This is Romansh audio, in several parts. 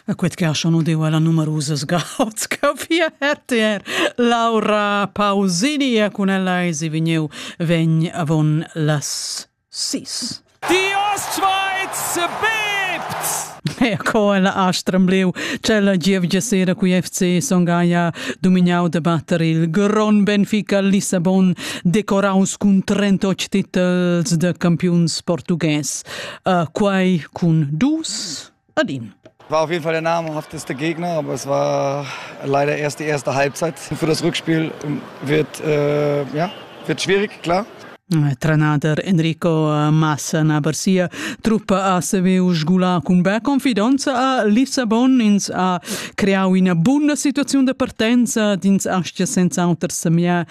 A quet cascha nu deva la numerusas gauds ch'eu fia RTR. Laura Pausini e cun ella esi vegnieu vegn avon las sis. Die Ostschweiz bebt! E co ella ha stremblieu cella gievgia sera cui FC Songaia domignau de batter il Gron Benfica Lissabon decoraus cun 38 titels de campiuns portugués. äh, quai cun dus ad in. War auf jeden Fall der Name hat ist der Gegner, aber es war leider erst die erste Halbzeit. Für das Rückspiel wird, äh, ja, wird schwierig, klar. Trenader Enrico Massa na Barcia truppa a Seveu sgulà cun bella confidenza a Lissabon ins ha creau ina buna situaziun da partenza d'ins astia senz'auter semia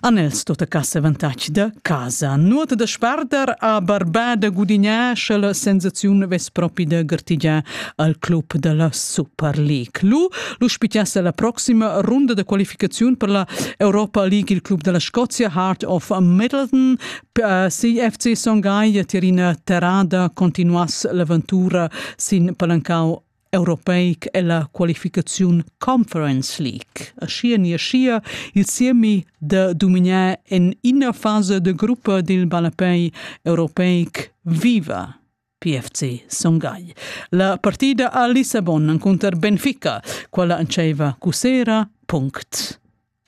Anels tot a casa avantatg da casa. Nuota da sparder a barba da gudignar, sche la sensaziun vess propi da gartigiar al club da la Super League. Lu, lu spitiasse la proxima runda da qualificaziun per la Europa League il club della Scozia Heart of Middleton. Eh, si FC Songhai Tirina Terrada continuass l'aventura sin palancau europeic ella qualificaziun Conference League. Aschia ni aschia il siemi da dominar en ina fase de gruppa dil ballapei europeic viva. PFC Songhai. La partida a Lissabon encunter Benfica, quella antceva cusera. Punct.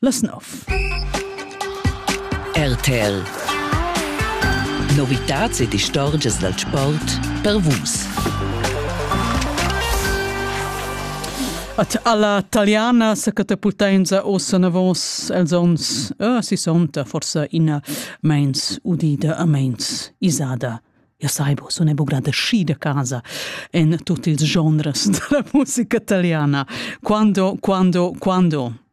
Las nov. RTL Novitats ed istorgias dal sport per Vus. At alla taliana sa catapultainsa ossa navos els ons uh, si sonta forsa ina meins udida a meins isada. Ja saibo, so ne bugrada schi de casa en tutti ils genres della musica italiana. Quando, quando, quando?